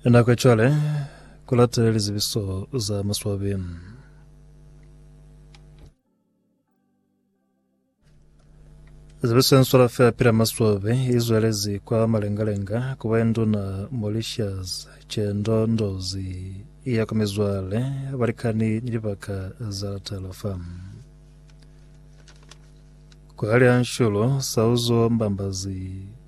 Nako ya cwale ku latele lizibiso za maswabi. Zibiso ye nswala fela pila maswabi i zwelezi kwa malengalenga ku ba ye nduna Mauritius Chendo Ndozi ya kwa mizwale, balikani ni libaka za latala fa kwa hali ha nshulu Sauzo Mbambazi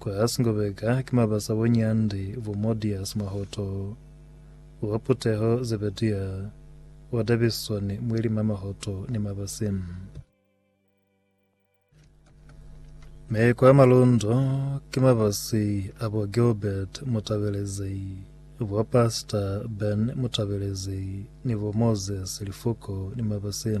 Kwa Asngobeka ki mabasa bo Nyandi, bo Modias Mahoto, wa Puteho Zebedia, wa Davison Mwelima Mahoto ni Mabasi. Mi kwa Malundo ki mabasi a bo Gilbert Mutabelezi, bo Pastor Ben Mutabelezi ni bo Moses Lifuko ni Mabasi.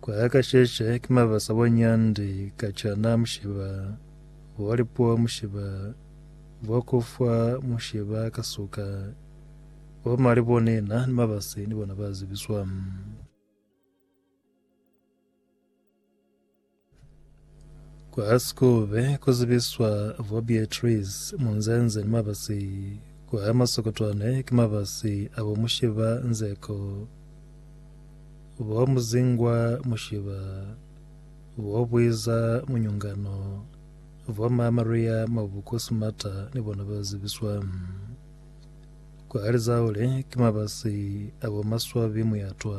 Kwa ya ka sheshe ki mabasa bo nyandi ka cana mushiba bo lipuo mushiba bo kufwa mushiba ka suka bo mali bo nina ni mabasi ni bona ba zibiswa. Ku Askove ku zibiswa bo Beatrice munzenze ni mabasi ku a masokotwane ki mabasi a bo mushiba nzeko, bo muzingwa mushiba, bo bwiza munyungano, bo ma Maria Mabuku Sumata ni bona ba zibiswa ku a lizaule ki mabasi a bo maswabi muyatwa.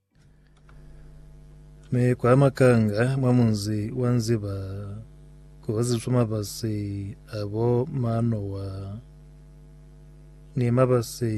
Mi kwa makanga mwa munzi wa Nziba kuhoziswa mabasi abo Manowa ni mabasi